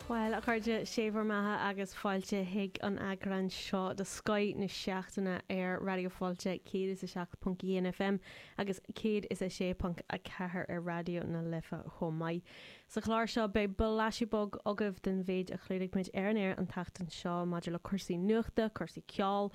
Bhuel, a chairde, sé bhur mbeatha agus fáilte chuig an eagrán seo de Scoith na Seachtaine ar Raidió Fáilte 107.1 FM agus 106.4 ar Raidió na Life chomh maith. Sa chlár seo beidh blaiseadh beag agaibh den mhéid a chlúdaigh muid ar an aer an tseachtain seo maidir le cúrsaí nuachta, cúrsaí ceoil,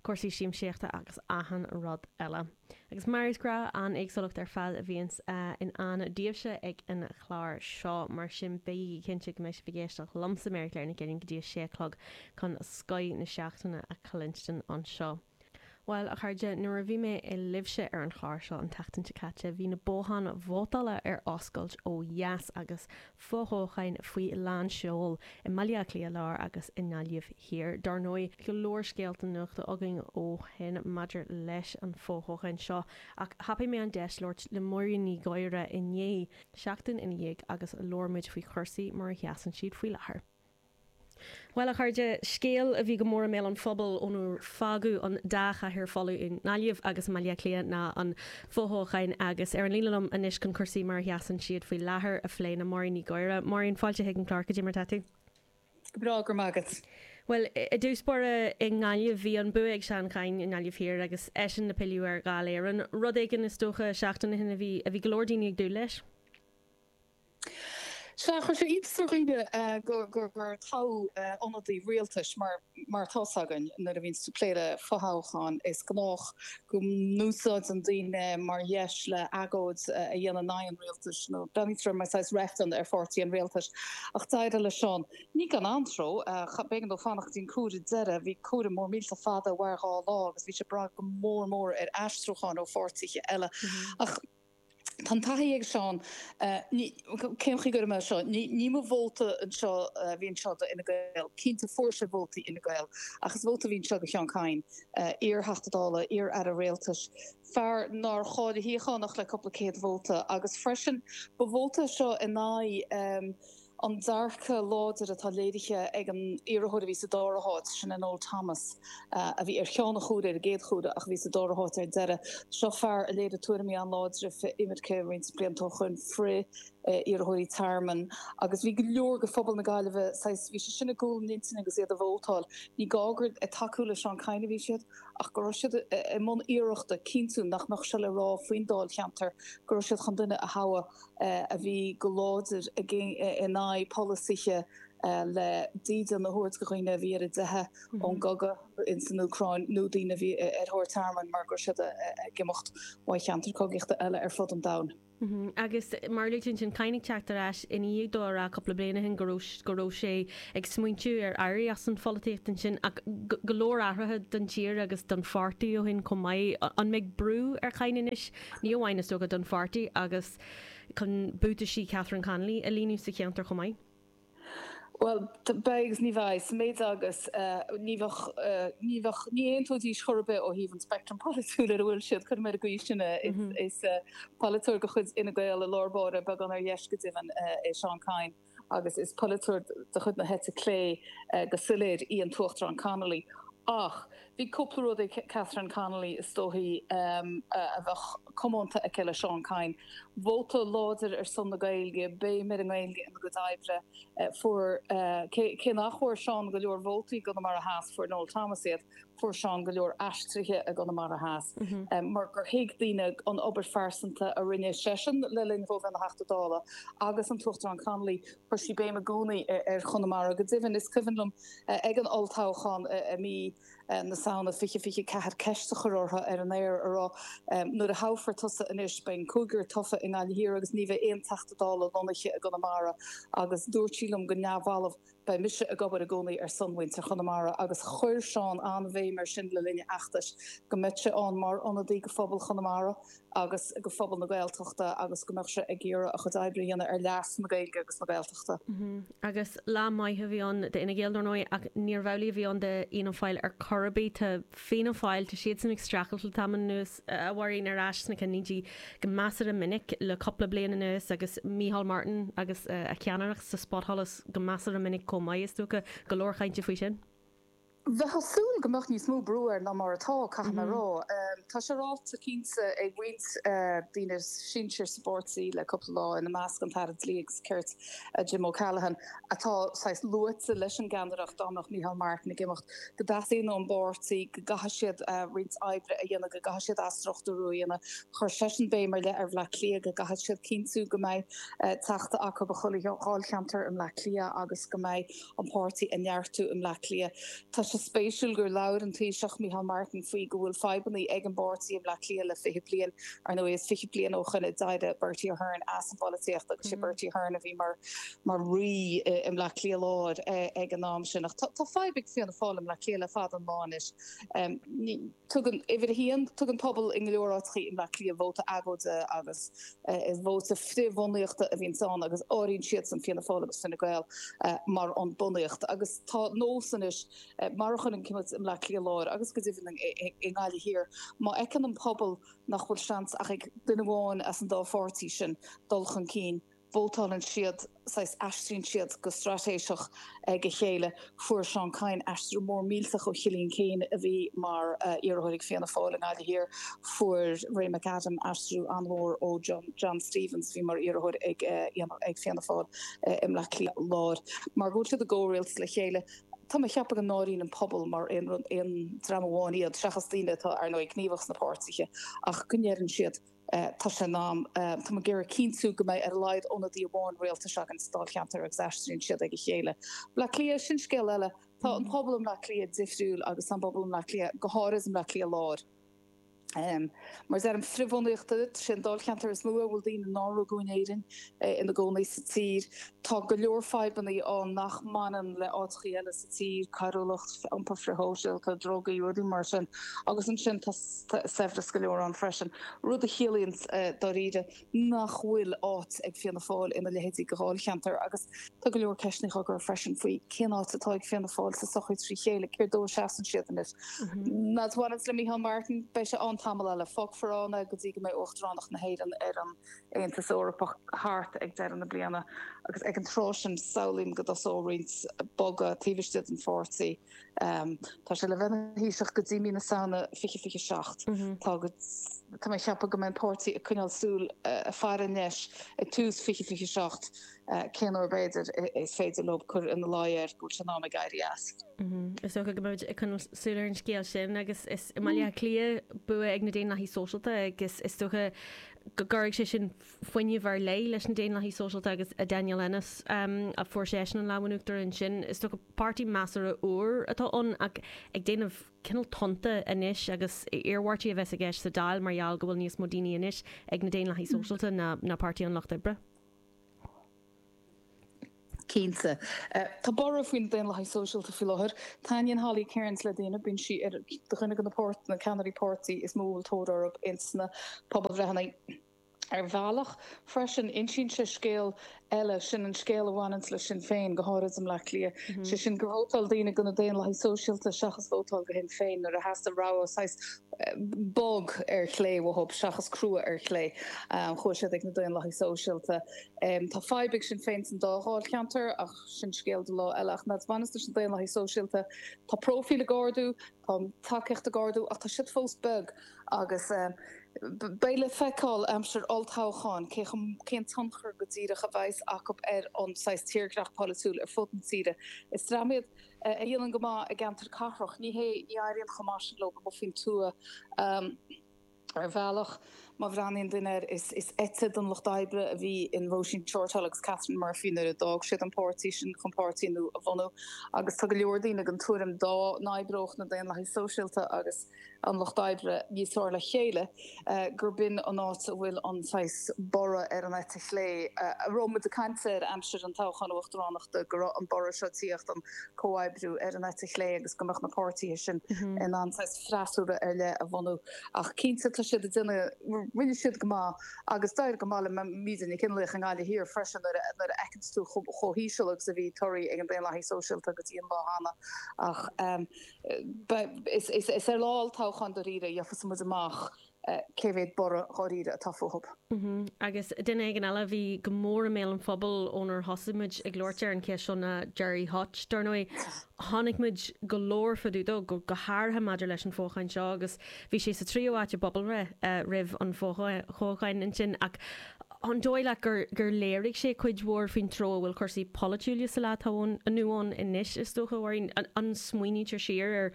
cúrsaí siamsaíochta agus achan rud eile. Agus mar is gnách, an-éagsúlacht ar fad a bhíonns i ndán daoibhse ag an chlár seo, mar sin bígí cinnte go mbeidh sibh ag éisteacht liomsa, Mary Claire Nic Uilín, go dtí a sé a chlog chun scoith na seachtaine a chluinstin anseo. Bhuel, a chairde, nuair a bhí mé libhse ar an chlár seo an tseachtain seo caite, bhí na botháin vótála ar oscailt ó dheas agus fothoghcháin faoi lán seoil i mBaile Átha Cliath Lár agus i nGaillimh Thiar. Dár ndóigh, go leor scéalta nuachta againn ó shin maidir leis an fothoghchán seo, ach thapaigh mé an deis labhairt le Máirín Ní Ghadhra inné, seachtain ina dhiaidh, agus labhair muid faoi chúrsaí mar a sheasann siad faoi láthair. Bhuel, a chairde, scéal a bhí go mór i mbéal an phobail ónar fágadh an dá chathaoir folamh i nGaillimh agus i mBaile Átha Cliath ná an fothoghchán agus ar an líne liom anois chun cúrsaí mar a sheasann siad faoi láthair a phlé ná Máirín Ní Ghadhra. Máirín, fáilte chuig an chlár, cad é mar atá tú? Go breá, go raibh maith agat. Bhuel, i dtús báire, i nGaillimh, bhí an bua ag Seán Kyne i nGaillimh Thiar agus eisean le pilleadh ar Dháil Éireann. Rud éigin, is dócha, seachtain ó shin a bhí go leor daoine ag dúil leis. Sea, chuir sé iontas ar dhaoine gur toghadh ionadaí rialtais, mar atá 's againn nuair a bhíonn tú ag plé le fothoghchán, is gnách go n-úsáideann daoine é mar dheis le agóid a dhéanamh in aghaidh an rialtais nó breathnaítear mar saghas reifreann ar pháirtí an rialtais. Ach d'éirigh le Seán, ní gan antró, b'éigean dó fanacht go dtí an comhaireamh deiridh, bhí comhaireamh mór millteach fada a mhair dhá lá agus bhí sé ag brath go mór mór ar aistriúcháin ó pháirtithe eile. Ach. Tá an taithí ag Seán, ní, cén chaoi a gcuirfidh mé é seo? Ní, ní mba vóta anseo a bhí anseo do Fhine Gael, cinnte fuair sé vótaí Fhine Gael, ach is vóta a bhí anseo do Sheán Kyne, iar-Theachta Dála, iar-Aire Rialtais, fear nár chaill a shuíochán ach le cúpla céad vóta, agus freisin ba vóta é seo in aghaidh, an dearcadh láidir atá léirithe ag an iarrthóir a bhí sa dara háit, sin é Noel Thomas, a bhí ar cheann an chomhairimh ar an gcéad chomhaireamh ach a bhí sa dara háit ar deireadh. Seo fear a léirigh tuairimí an-láidre frith-imirce roinnt blianta ó shoin, frith-iarrthóirí tearmainn agus bhí go leor de phobal na Gaillimhe saghas, bhí sé sin i gcúl a n-intinne agus iad ag vótáil. Ní gá gur ag tacú le Seán Kyne a bhí siad ach go raibh siad i mbun iarrachta cinntiú nach mbeadh seo le rá faoin dáilcheantar, go raibh siad chun duine a thoghadh. a bhí go láidir in aghaidh polasaithe le dídean a thabhairt do dhaoine a bhí ar a dteitheadh ón gcogadh san Úcráin nó daoine a bhí ar thóir tearmainn mar go raibh siad ag imeacht ó cheantair cogaíochta eile ar fud an domhain. Agus mar a luaitear ansin, Kyne ag teacht ar ais i ndiaidh dó a rá cúpla bliain ó shin go raibh sé ag smaointiú ar éirí as an pholaitíocht ansin. Ach go leor athruithe don tír agus don pháirtí ó shin chomh maith. An mbeidh brú ar Kyne anois ní amháin, is dócha, don pháirtí agus chun buataisí Catherine Connolly a líonadh sa cheantar chomh maith? Bhuel, beidh agus ní bheidh, sa méid agus ní bheadh, ní bheadh, ní aontóidís chor ar bith ó thaobh an speictrim pholaitiúil ar a bhfuil siad, cuirfidh mé ar an gcaoi sin é. Is polaiteoir de chuid Fhine Gael i lár báire, beagán ar dheis go deimhin, é Seán Kyne. agus is polaiteoir de chuid na heite clé go soiléir í an tUachtarán Connolly ach bhí cúpla rud ag Catherine Connolly is dóichí a bheadh comónta aici le Seán Kyne, vóta láidir ar son na Gaeilge, béim ar an nGaeilge ina gcuid oibre, fuair, cé nach bhfuair Seán go leor vótaí i gConamara Theas, fuair Noel Thomas iad. Fuair Seán go leor aistrithe i gConamara Theas mar gur thuig daoine an obair phearsanta a rinne seisean le linn dó a bheith ina Theachta Dála agus an tUachtarán Connolly. Chuir sí béim i gcónaí ar Chonamara. Go deimhin, is cuimhin liom ag an olltoghchán i mí na Samhna 2024 ceist a chur uirthi ar an aer a rá, 'Nuair a thoghfar tusa anois, beidh an cúigear tofa i nGaillimh Thiar agus ní bheidh aon Teachta Dála lonnaithe i gConamara. Agus dúirt sí liom go neamhbhalbh. Beidh mise ag obair i gcónaí ar son mhuintir Chonamara agus chuir Seán an-bhéim air sin le linn a fheachtais, go mbeadh sé ann mar ionadaí go phobal Chonamara agus go phobal na Gaeltachta agus go mbeadh sé ag iarraidh a chuid oibre a dhéanamh ar leas na Gaeilge agus na Gaeltachta. Agus lá maith a bhí ann d'Fhine Gael, dar ndóigh, ach níorbh amhlaidh a bhí ann d'Fhianna Fáil ar chor ar bith. Tá Fianna Fáil, tá siadsan ag streachailt le tamall anuas. a Mháirín, ar ais sna cinnlínte go measartha minic le cupla bliain anuas agus Micheál Martin agus a cheannaireacht sa spotsholas go measartha minic chomh maith, is dócha. Go leor cainte faoi sin. Bheifeá ag súil go mbeadh níos mó brú air ná mar atá, caithfidh mé a rá. Tá sé ráite cinnte ag roinnt daoine sinsearacha sa bpáirtí le cupla lá, ina measc an tAire Dlí agus Cirt, Jim O'Callaghan, atá saghas luaite leis an gceannaireacht, dá mbeadh Micheál Martin ag imeacht, go dteastaíonn ón bpáirtí go gcaithfidh siad roinnt oibre a dhéanamh, go gcaithfidh siad athstruchtúrú a dhéanamh. Chuir seisean béim ar leith ar Bhleá Cliath, go gcaithfidh siad cinntiú go mbeidh Teachta acu i chuile dháilcheantar i mBleá Cliath agus go mbeidh an páirtí a neartú i mBleá Cliath. Tá sé spéisiúil gur labhair an Taoiseach, Micheál Martin faoi go bhfuil fadhbanna ag an bpáirtí i mBleá Cliath le 20 bliain. Ar ndóigh is 20 bliain ó shoin a d'éirigh Bertie Ahern as an bpolaitíocht agus sé Bertie Ahern a bhí mar mar rí i mBleá Cliath Láir ag an am sin. Ach tá fadhb ag Fianna Fáil i mBleá Cliath le fada an lá anois. Tugann, uimhir a haon, tugann pobal go leor áiteachaí i mBleá Cliath vóta agóide agus is vóta frith-bhunaíochta a bhíonns ann agus áiríonn siadsan Fianna Fáil agus Fine Gael mar an bunaíocht agus tá nós anois, mar a chonaic muid i mBleá Cliath Láir agus go deimhin i nGaillimh Thiar, má fheiceann an pobal nach bhfuil seans ach ag duine amháin as an dá pháirtí sin dul chun cinn, vótálann siad, saghas aistríonn siad go straitéiseach ag a chéile. Fuair Seán Kyne aistriú mór millteach ó Chillian Keane a bhí mar iarrthóir ag Fianna Fáil i nGaillimh Thiar, fuair Ray McAdam aistriú an-mhór ó John Stephens a bhí mar iarrthóir ag Fianna Fáil i mBleá Cliath Láir, mar go bhfuil siad i gcomhrialtas le chéile. Tá mé ag ceapadh go n-áiríonn an pobal mar aon dream amháin iad, seachas daoine atá, ar ndóigh, gníomhach sna páirtithe ach go ndeireann siad, Tá sé in am. Tá muid ag iarraidh cinntiú go mbeidh ar a laghad ionadaí amháin rialtais againn sa Dáilcheantar agus aistríonn siad ag a chéile. Bleá Cliath, sin scéal eile. Tá an pobal i mBleá Cliath difriúil agus tá an pobal i mBleá Cliath, go háirid i mBleá Cliath Láir, mar a deirim frithbhunaíochta sin an Dáilcheantar is mó a bhfuil daoine nár rugadh in Éirinn ina gcónaí sa tír. Tá go leor fadhbanna ann nach mbaineann le áiteachaí eile sa tír, coiriúlacht, iompar frithshóisialta, drugaí, rudaí mar sin, agus ansin tá saibhreas go leor ann freisin, rud a chiallaíonn dáiríre nach bhfuil áit ag Fianna Fáil ina leithéidí de dháilcheantar. Agus tá go leor ceisteanna á gcur freisin faoi cén áit atá ag Fianna Fáil sa sochaí trí chéile, céard dó a seasann siad anois. Mar a bhaineanns le Micheál Martin, beidh sé ann tamall eile, fágfar ann é go dtí go mbeidh Uachtaránacht na hÉireann ar an Aontas Eorpach thart ag deireadh na bliana agus ag an tráth sin samhlaím go dtosóidh roinnt bogadh taobh istigh den pháirtí. Tá sé le bheith ina Thaoiseach go dtí mí na Samhna 2027. Tá mé ag ceapadh go mbeidh an páirtí ag coinneáil súil faire ar an deis i dtús 2027. cén uair, b'fhéidir, is féidir leo cur ina luí air go bhfuil sé in am aige éirí as. Is dócha go mbeimid ag coinneáil súil ar an scéal sin agus is i mBaile Átha Cliath bua ag na Daonlathaigh Sóisialta agus is dócha go gcuirfidh sé sin fuinneamh ar leith leis na Daonlathaigh Sóisialta agus Daniel Ennis a fuair seisean an lámh in uachtar ansin. Is dócha páirtí measartha úr atá ann ach ag déanamh cineál tonnta anois agus iarmhairtí a bheas i gceist sa Dáil mar gheall go bhfuil níos mó daoine anois ag na Daonlathaigh Sóisialta ná Páirtí an Lucht Oibre. Cinnte. Tá borradh faoi na Daonlathaigh Sóisialta faoi láthair. Taitníonn Holly Cairns le daoine, bíonn sí ar dhuine de na ceannairí páirtí is mó a bhfuil tóir orthu ins na pobalbhreitheanna. Ar bhealach, freisin, insíonn sé scéal eile, sin an scéal a bhaineanns le Sinn Féin, go háirid i mBleá Cliath, sé sin gur vótáil daoine do na Daonlathaigh Sóisialta seachas vótáil go Shinn Féin nuair a theastaigh rogha saghas bog ar chlé, más ea, seachas crua ar chlé. Chuaigh siad ag na Daonlathaigh Sóisialta. Tá fadhb ag Sinn Féin san dá dháilcheantar ach sin scéal do lá eile. Ach mar a bhaineas leis na Daonlathaigh Sóisialta. Tá próifíl ag ardú, tá tacaíocht ag ardú ach tá siad fós beag agus beidh le feiceáil aimsir olltoghcháin cé chomh, cén tionchar go díreach a bheas acu ar an saghas tírdhreach polaitiúil ar fud na tíre. Is dream iad. a dhéanann go maith i gceantair cathrach, ní hé, ní éiríonn chomh maith sin leo amuigh faoin tuath. Ar bhealach, má bhreathnaíonn duine air, is eite den Lucht Oibre a bhí in Róisín Shortall agus Catherine Murphy nuair a d'fhág siad an páirtí sin chun páirtí nua a bhunú agus tá go leor daoine den tuairim dá n-oibreodh na Daonlathaigh Sóisialta agus an Lucht Oibre níos fearr le chéile, gur b'in an áit a bhfuil an saghas borradh ar an eite chlé a raibh muid ag caint air aimsir an toghcháin uachtaránachta, go raibh an borradh seo, tíocht an comhoibriú ar an eite chlé agus go mbeadh na páirtithe sin in ann saghas freasúra ar leith a bhunú. Ach cinnte tá siad ag déanamh, rinne siad go maith agus d'éirigh go maith le Míde Nic Fhionnlaoich i nGaillimh Thiar freisin nuair a fheiceanns tú chomh híseal agus a bhí torthaí ag na Daonlathaigh Sóisialta go dtí an lá céanna ach Is ar lá olltoghcháin dáiríre a gheobhas muid amach cé mhéad borradh dáiríre atá fúthu. Agus duine éigin eile a bhí go mór i mbéal an phobail ónar thosaigh muid ag labhairt ar an cheist seo ná Gerry Hutch. Dar ndóigh, chonaic muid go leor fadú dó, go háirithe maidir leis an fhothoghchán seo agus bhí sé sa tríú háit i bpobalbhreith roimh an fhothoghchán ansin ach, an dóigh leat gur léirigh sé cuid mhór faoin treo a bhfuil cúrsaí polaitiúla sa lá atá inniu ann anois, is dócha, a Mháirín? Má smaoinítear siar ar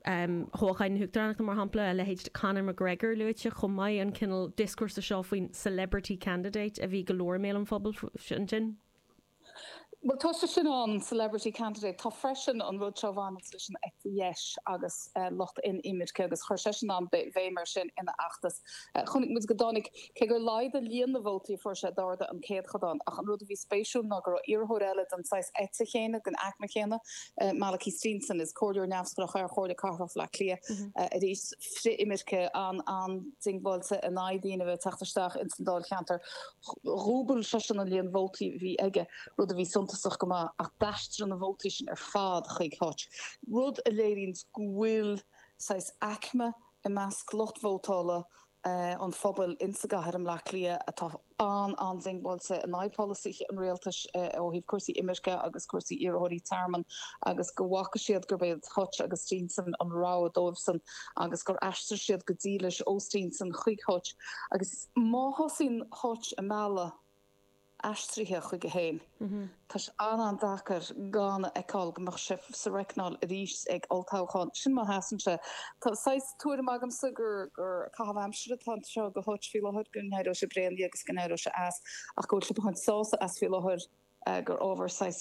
thoghchán na huachtaránachta, mar shampla, a leithéid de Conor McGregor luaite chomh maith, an cineál dioscúrsa seo faoin 'celebrity candidate' a bhí go mór i mbéal an phobail ansin? Bhuel, tá sé sin ann, celebrity candidate. Tá freisin an rud seo a bhaineanns leis an eite dheis agus lucht frith-inimirce agus chuir seisean an-bhéim air sin ina fheachtas. Chonaic muid go dtáinig, cé gur laghdaigh líon na vótaí a fuair sé, d'ardaigh an céatadán ach an rud a bhí spéisiúil ná go raibh iarrthóir eile den saghas eite céanna, den aicme chéanna, Malachy Steenson, is comhairleoir neamhspleách é ar Chomhairle Cathrach Bhleá Cliath, arís frith-imirce, an-an-diongbháilte in aghaidh daoine a bheith ag teacht isteach ins an dáilcheantar. Dhúbail seisean an líon vótaí a bhí aige, rud a bhí suntasach go maith, ach d'aistrigh na vótaí sin ar fad chuig Hutch, rud a léiríonn go bhfuil saghas aicme i measc lucht vótála an phobail insa gcathair i mBleá Cliath atá an-an-diongbháilte in aghaidh pholasaithe an rialtais ó thaobh cúrsaí imirce agus cúrsaí iarrthóirí tearmainn agus go bhfaca siad gurb iad Hutch agus Steenson an rogha dóibhsan agus gur aistrigh siad go dílis ó Steenson chuig Hutch agus Má thosaíonn Hutch ag mealladh aistrithe chuige féin, tá sé an-an-deacair gan a fheiceáil go mbeadh sé sa reicneáil arís ag olltoghchán. Sin má sheasann sé. Tá saghas tuairim agamsa gur caitheamh aimsire atá anseo ag Hutch faoi láthair, go n-éireoidh sé bréan de agus go n-éireoidh sé as ach go bhfuil sé ag baint sásamh as faoi láthair gur ábhar saghas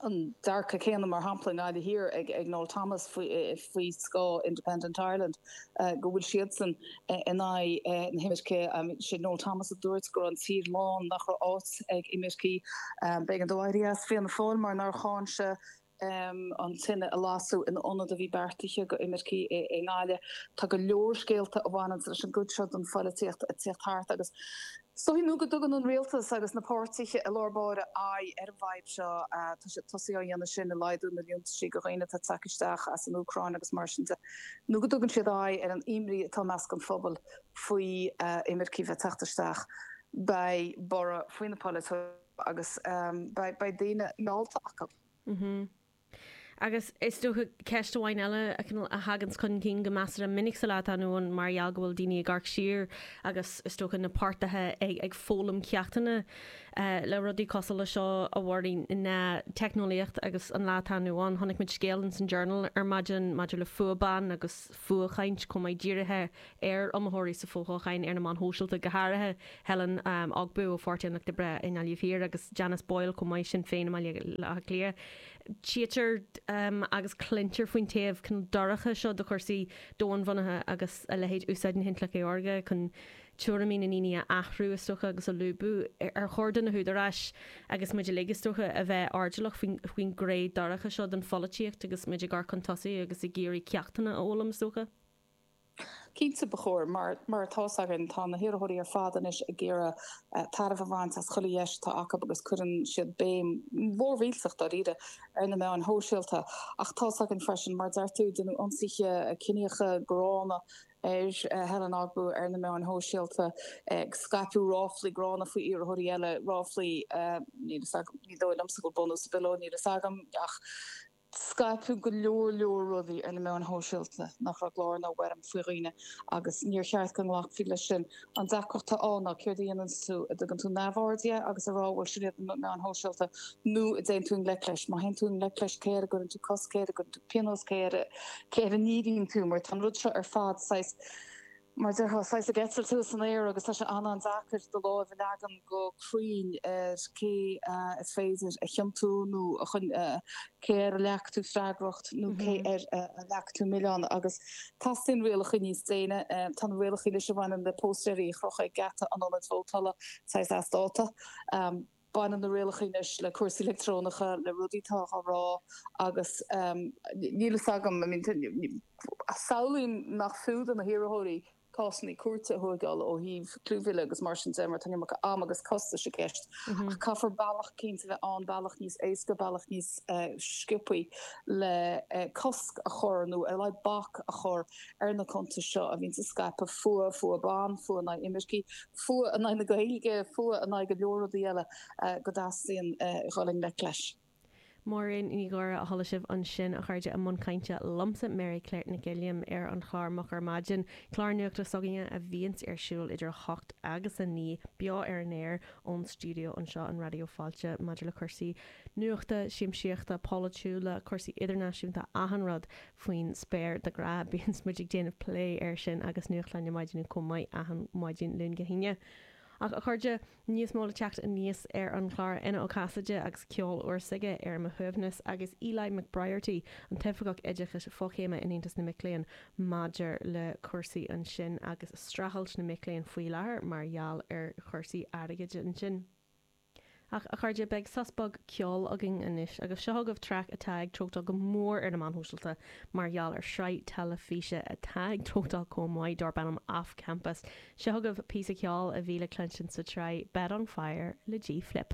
an dearcadh céanna, mar shampla, i nGaillimh Thiar ag Noel Thomas faoi scáth Independent Ireland, go bhfuil siadsan in aghaidh na himirce. Sé Noel Thomas a dúirt go raibh an tír lán, nach raibh áit ag imircigh. B'éigean dó éirí as Fianna Fáil mar nár cháin sé an tine a lasadh in ionad a bhí beartaithe go imircigh i nGaillimh. Tá go leor scéalta a bhaineanns leis an gcuid seo den pholaitíocht ag tíocht thart agus Is dóigh nó go dtugann an Rialtas agus na páirtithe i lár báire aghaidh ar an bhfadhb seo. Tá siad tosaithe á dhéanamh sin ag laghdú na liúntaisí do dhaoine atá tagtha isteach as an Úcráin agus mar sin de, nó go dtugann siad aghaidh ar an imní atá i measc an phobail faoi imircigh bheith teacht isteach. Beidh borradh faoi na polaiteoirí seo agus beidh daoine meallta acu. Agus is dócha ceist amháin eile a thaganns chun cinn go measartha minic sa lá atá inniu ann mar gheall go bhfuil daoine ag amharc siar agus is dócha na páirtithe ag foghlaim ceachtanna le rudaí cosúil leis seo de bharr na teicneolaíocht agus an lá atá inniu ann. Chonaic muid scéal in san Journal ar maidin maidir le fuath ban agus fuathchaint chomh maith dírithe ar iomaitheoirí sa bhfothoghchán ar na meáin shóisialta, go háirithe Helen Ogbu ó Pháirtí an Lucht Oibre i nGaillimh Thiar agus Janice Boyle chomh maith, Sinn Féin i mBaile Átha Cliath. Tchítear agus cluintear faoin taobh cineál dorcha seo de chúrsaí domhainbhunaithe agus a leithéid úsáid na hintleachta saorga chun tuairimí na ndaoine a athrú, is dócha, agus a lúbadh. Ar chóir do na húdaráis, agus muid uilig, is dócha, a bheith airdeallach faoin ghné dorcha seo den pholaitíocht agus muid ag amharc chun tosaigh agus ag iarraidh ceachtanna a fhoghlaim, is dócha? Cinnte, ba chóir. Mar atá's againn, tá na hiarrthóirí ar fad anois ag iarraidh tairbhe a bhaint as chuile dheis atá acu agus cuireann siad béim mhór mhillteach, dáiríre, ar na meáin shóisialta. Ach tá's againn freisin, mar a deir tú, deineadh ionsaithe ciníocha gránna ar Helen Ogbu ar na meáin shóisialta, scaipeadh ráflaí gránna faoi iarrthóirí eile, ráflaí, níl fhios agam, ní dóigh liomsa go bhfuil bunús ar bith leo, níl fhios agam, ach. Scaipeadh go leor leor rudaí ar na meáin shóisialta nach raibh i gclár ná i bhfoirm faoi dhaoine agus níor cheart go nglacfaí leis sin. An deacracht atá ann ná céard a dhéananns tú? An dtugann tú neamhaird dhe agus a rá bhuel sin iad na meáin shóisialta nó an dtéann tú i ngleic leis? Má théann tú i ngleic leis cé air a gcuireann tú cosc, cé air a gcuireann tú pionós, cé air a ndíríonn tú mar tá an rud seo ar fad saghas mar a déarfá, saghas ag eitilt thuas san aer agus tá sé an-an-deacair do láimh a leagan go cruinn ar cé is féidir a chiontú nó a cé air a leagfaidh tú freagracht nó cé air a leagfaidh tú milleán agus teastaíonn rialacha níos déine. Tá na rialacha anois a bhaineann le póstaeirí a chrochadh ag geata an ionaid vótála saghas as dáta. Baineann na rialacha anois le cúrsaí leictreonacha, le rudaí atá á rá agus níl a fhios agam, I mean, samhlaím nach fiú do na hiarrthóirí cásanna cúirte a thógáil ó thaobh clúmhilleadh agus mar sin de mar tá an iomarca ama agus costais i gceist ach caithfear bealach cinnte a bheith ann, bealach níos éasca, bealach níos sciopaí le cosc a chur nó ar a laghad bac a chur ar na cuntais seo a bhíonns ag scaipeadh fuath, fuath ban, fuath in aghaidh imircigh, fuath in aghaidh na Gaeilge, fuath in aghaidh go leor rudaí eile go dteastaíonn dul i ngleic leis. Máirín Ní Ghadhra a chuala sibh ansin, a chairde, i mbun cainte liomsa, Mary Claire Nic Uilliam, ar an chlár Moch ar Maidin, clár nuachta s'againne a bhíonns ar siúl idir a hocht agus a naoi, beo ar an aer ón stiúideo anseo in Raidió Fáilte, maidir le cúrsaí nuachta, siamsaíochta, polaitiúla, cúrsaí idirnáisiúnta, achan rud. faoin spéir de ghnáth. Bíonns muid ag déanamh plé air sin agus nuachtáin na maidine chomh maith achan mhaidin Luain go hAoine. Ach a chairde, níos mó le teacht aníos ar an chlár. Éanna Ó Casaide agus ceol úr s'aige ar mo shuaimhneas agus Eli McBriarty, an tOifeagach Oideachais Fochéime in Aontas na Mic Léinn maidir le cúrsaí ansin agus streachailt na mic léinn faoi láthair mar gheall ar chúrsaí airgid ansin. Ach, a chairde, beidh sos beag ceoil againn anois, agus seo chugaibh traic atá ag treochtáil go mór ar na meáin shóisialta mar gheall ar shraith teilifíse atá ag treochtáil chomh maith, darb ainm Off Campus. Seo chugaibh píosa ceoil a bhí le cluinstin sa tsraith Bed on Fire le G. Flip.